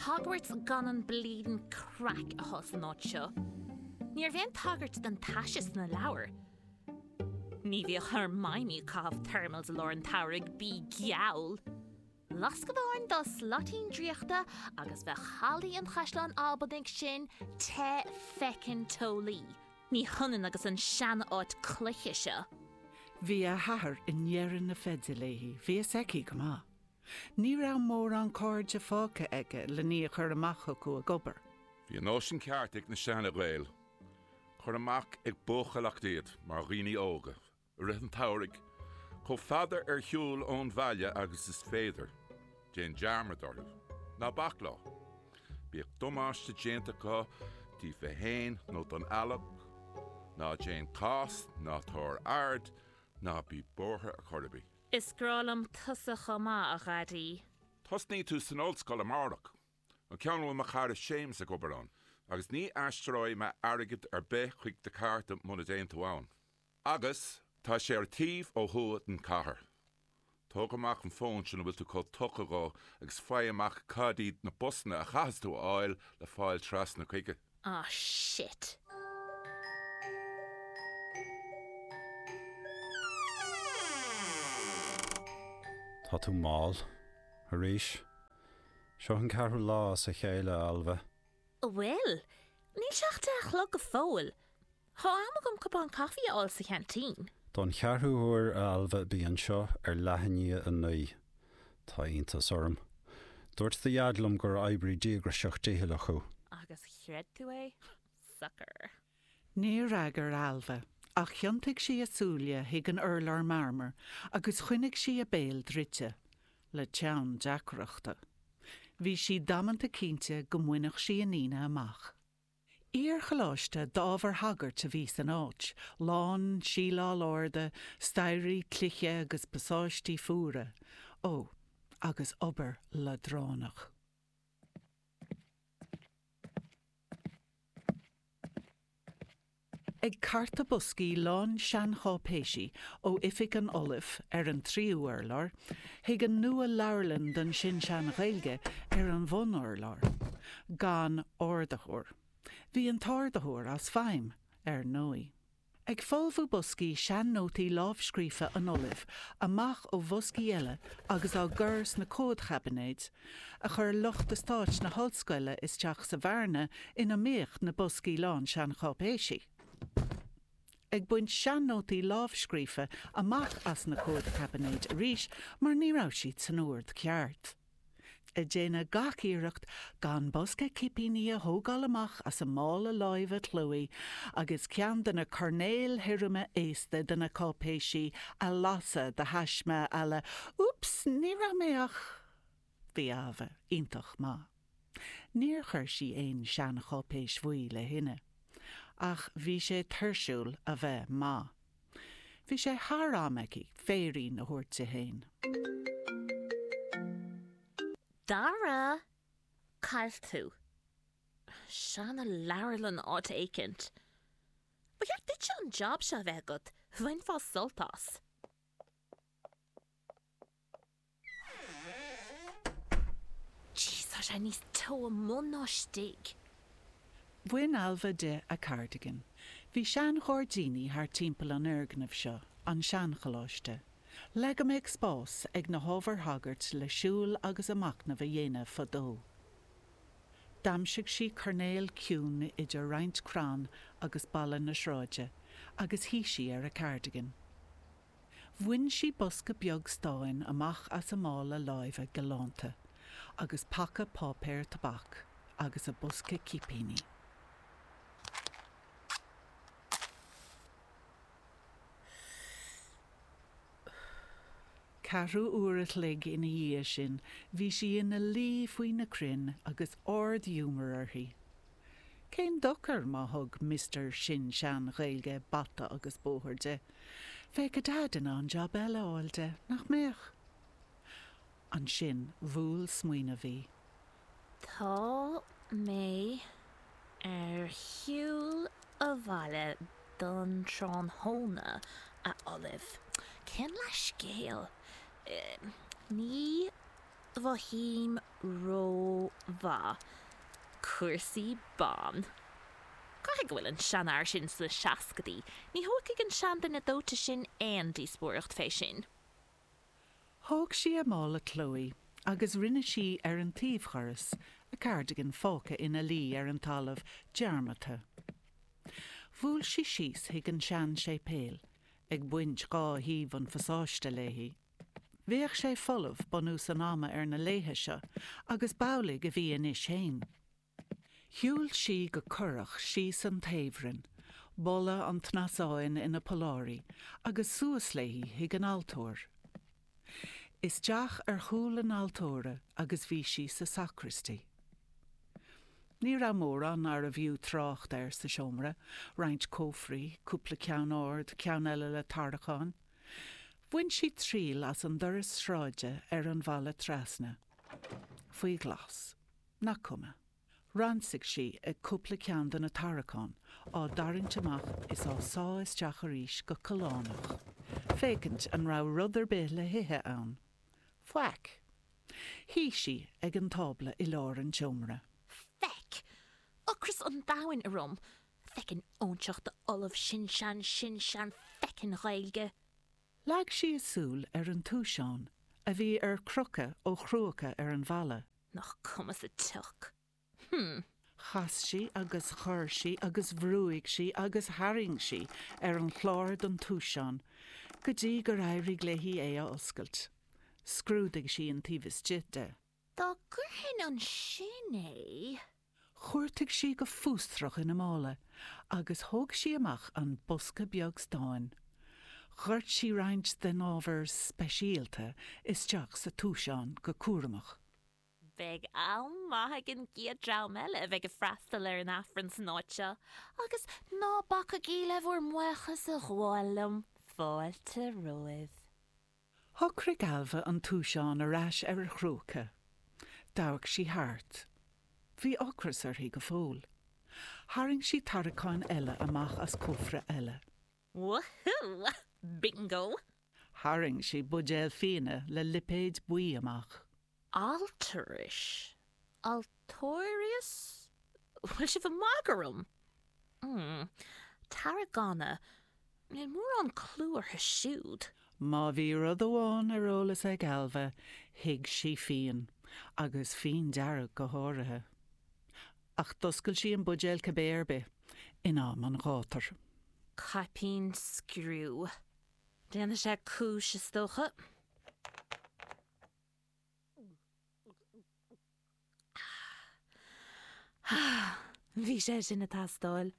Hogwarts gan an bleedin craic a chuid san áit seo. Ní raibh aon tagairt don taise sna leabhair. Ní bhíodh Hermione ag caitheamh thermals i lár an tsamhraidh bí geall! Lasc amháin dá slaitín draíochta agus bheadh hallaí an Chaisleáin Albanaigh sin te feckin teolaí. Ní hionann agus an seanáit cloiche seo. Bhí a hathair i ndeireadh na feide léi, bhí a fhios aici go maith. Ní raibh mórán cairde fágtha aige lena iníon a chur amach chucu ag obair. Bhí an nóisean ceart ag na sean-Ghaeil. Cuir amach ag buachailleacht iad mar dhaoine óga i rith an tsamhraidh, chomh fada ar shiúl ón bhaile agus is féidir. Déan dearmad orthu. Ná bac leo. Bíodh damáiste déanta acu díofa fhéin nó don eallach. Ná déan cás, ná tabhair aird, ná bí buartha ar chor ar bith. Is grá liom tusa chomh maith, a dhaidí. Tosaíonn tú san ollscoil amárach, an ceann a bhfuil mo chara Séamus ag obair ann, agus ní aistreoidh mé airgead ar bith chuig do chárta muna dtéann tú ann. Agus tá sé ar an taobh ó thuaidh den chathair. Tóg amach an fón sin a bhfuil tú chomh tugtha dhó agus faigh amach cad iad na busanna a chaithfeas tú a fháil le fáil trasna chuige. Ah shit. Tá tú mall. Arís. Seo an ceathrú lá as a chéile, a Ailbhe. An bhfuil? Níl sé ach deich a chlog go fóill. Tá am agam cupán caife a fháil sa cheaintín. Don cheathrú huair a Ailbhe, bí anseo ar leath i ndiaidh a naoi. Tá iontas orm. Dúirt do dhaid liom gur oibrí díograiseach dicheallach thú. Agus chreid tú é? Sucker. Níor fhreagair Ailbhe, ach thiontaigh sí a súile chuig an urlár marmair agus choinnigh sí a béal druidte, le teann deacrachta. Bhí sí damanta cinnte go mbainfeadh sí an Aoine amach. Iar-choláiste d'ábhar sagairt a bhí san áit, lán síleáil arda, staighrí cloiche agus pasáistí fuara. Ó, agus obair leadránach. Ag cartadh boscaí lán seancháipéisí ó oifig an Ollaimh ar an tríú urlár, Chuig an nualeabharlann don sin-sean-Ghaeilge ar an bhunurlár, gan ardaitheoir. Bhí an t-ardaitheoir as feidhm, ar ndóigh. Ag folmhú boscaí sean-nótaí lámhscríofa an Ollaimh amach ó bhoscaí eile agus á gcur sna comhadchaibinéid, a chuir lucht estáit na hollscoile isteach sa bhearna ina mbíodh na boscaí lán seancháipéisí. ag baint sean-nótaí lámhscríofa amach as na comhadchaibinéid arís mar ní raibh siad san ord ceart. Ag déanamh gach iarracht gan bosca cipíní a thógáil amach as a mála láimhe Chloé agus ceann de na coirnéil thirime aosta de na cáipéisí a lasadh de thaisme à la 'úps, ní raibh mé ach. Bhí Ailbhe iontach maith. Níor chuir sí aon seancháipéis bhuí le thine. Ach bhí sé tuirsiúil a bheith maith. Bhí sé thar am aici féirín a thabhairt di féin. Dara, cá bhfuil tú? Seanleabharlann áit éicint. Ba cheart duitse an job seo a bheith agat, bhainfeá sult as. Tá sé níos teo amuigh ná istigh. Bhain Ailbhe di a cardigan. Bhí seanghairdíní thart timpeall an fhoirgnimh seo, an seancholáiste. Le go mbeadh spás ag na hábhair shagairt le siúl agus a macnamh a dhéanamh fadó, d'aimsigh sí coirnéal ciúin idir roinnt crann agus balla na sráide agus shuigh sí ar a cardigan. Bhain sí bosca beag stáin amach as a mála láimhe galánta agus paca páipéir tobac agus a bosca cipíní. Ceathrú uair a chloig ina dhiaidh sin bhí sí ina luí faoi na crainn agus ard-ghiúmar uirthi. Cén dochar má thug Mister Sin-Sean-Ghaeilge bata agus bóthar di? Bheadh a Deaid in ann jab eile a fháil di, nach mbeadh? Ansin bhuail smaoineamh í. Tá mé ar shiúl abhaile don tráthnóna, a Ollaimh. Cén leathscéal? Ní mhothaím rómhaith. Cúrsaí ban. Caithfidh go bhfuil an seanfhear sin sna seascadaí, ní thógfaidh an seanduine dóite sin aon díospóireacht fé sin. Thóg sí a mála Chloé agus rinne sí ar an taobhdhoras, a cardigan fágtha ina luí ar an talamh, dearmadta. Bhuail sí síos chuig an seanséipéal, ag baint dhá thaobh an phasáiste léi. Bheadh sé folamh bunús an ama ar na laethe seo agus b'amhlaidh a bhí anois fhéin. Shiúil sí go corrach síos an taobhroinn, boladh an tsnasáin ina polláirí agus suas léi chuig an altóir. Isteach ar chúl an altóra agus bhí sí sa sacraistí. Ní raibh mórán arbh fhiú trácht air sa seomra, roinnt cófraí, cúpla ceann ard, ceann eile le tarraiceáin. Bhain sí triail as an doras sráide ar an bhalla trasna. Faoi ghlas. Nach cuma. Ransaigh sí cúpla ceann de na tarraiceáin, á dtarraingt amach is á sá isteach arís go callánach, féachaint an raibh rud ar bith le hithe ann. Faic. Shuigh sí ag an tábla i lár an tseomra. Feck. Ocras an domhain orm. Feckin' óinseach d'ollamh sin-sean sin-sean feckin' Ghaeilge! Leag sí a súil ar an túiseán a bhí ar crochadh ó chrúca ar an bhalla. Nach cuma sa tsioc! Hm! Chas sí agus chuir sí agus bhrúigh sí agus tharraing sí ar an chlár den túiseán go dtí gur éirigh léi é a oscailt. Scrúdaigh sí an taobh istigh de. Á, go díreach ansin é. Chuartaigh sí go fústrach ina mála agus thóg sí amach an bosca beag stáin. Dhoirt sí roinnt den ábhar speisialta isteach sa túiseán go cúramach. Beidh am maith ag an gcéad dream eile a bheidh ag freastal ar an Aifreann san áit seo agus ná bacaigí le bhur mbuíochas a ghabháil liom. Fáilte romhaibh. Shocraigh Ailbhe an túiseán ar ais ar a chrúca. D'amharc sí thart. Bhí ocras uirthi go fóill. Tharraing sí tarraiceáin eile amach as cófra eile. Wahoo! Bingo! Tharraing sí buidéal fíona le lipéad buí amach. Alturas, Altóirios? Bhfuil sibh ag magadh orm? mm. Tarragona, níl mórán clú orthu siúd. Má bhí rud amháin ar eolas ag Ailbhe, thuig sí fíon, agus fíon dearg go háirithe. Ach d'oscail sí an buidéal cibé ar bith, in am an ghátair. Caipín scriú. Déanfaidh sé cúis, is dócha. Bhí sé sin ag teastáil.